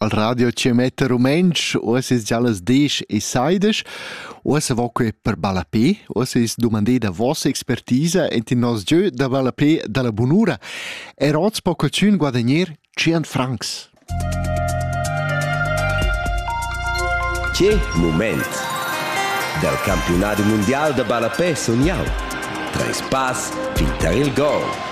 al radio che mette rumentsch uoss es già las desch e saidesch uossa vo que per ballapé uossa es dumandé da vossa expertisa ent in nos gieu da ballapé da la bunura er oz po cocün guadagner 100 francs Che moment dal campionat mundial da ballapé sun jau Treis pass fin tar il gol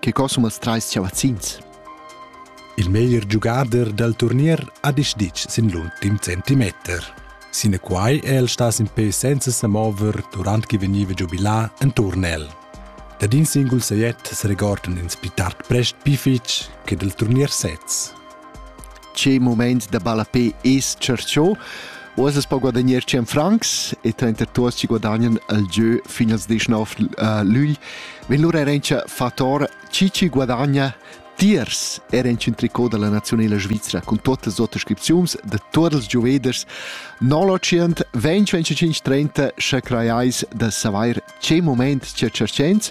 Che cosumas trais chavazzins? Il meglier giugader dal turnier ha deciditg sin l'ultim centimeter. Sinaquai è el stà sin pe senza sa mover durant che vegniva giubilà en turnel. Dad in singul sajet se regordan ins pli tard prest pli fitg che dal turnier sez. che moment da ballapé es tschercho. Uas es pa guadagner 100 francs e trenter tuos ci guadagnan al gieu fin als 19 uh, lügl. Vin lura erencha fator chi ci guadagna tiers era in tricot della nazionale Svizzera con tutte le autoscrizioni de tutti i gioveders 925 30 che creiais de saver che moment ci cercens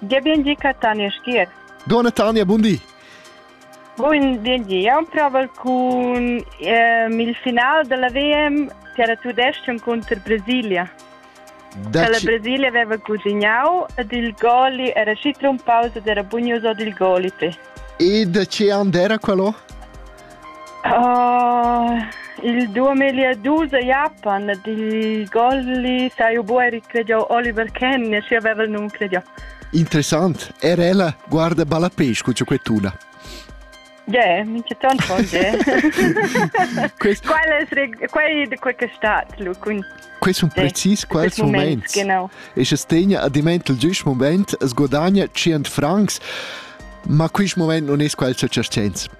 Gia bien di, Catania Schier. Dona Tania, bun di. Bun di, io proval cun ehm, il final della VM per Tudestion contro Brasilia. Da la Brasilia aveva cugignau ed il goli era sci trompauso, era bugnoso dil goli. E da che and era quello? Il duamilli e dus a Japan dil golli sai jeu buca recregiau Oliver Kahn, schi haveva il num cregiau. Interessant, er ella guarda ballapes con ciocchettuna. Yeah, minch'eton pon dire. Quest... Quel è quei di quel che è stato, lu cun Questo è precis quel moment. Genau. E se tegna a dimentel giusto moment, es guadagna 100 francs, ma quest moment non è quel cercenz.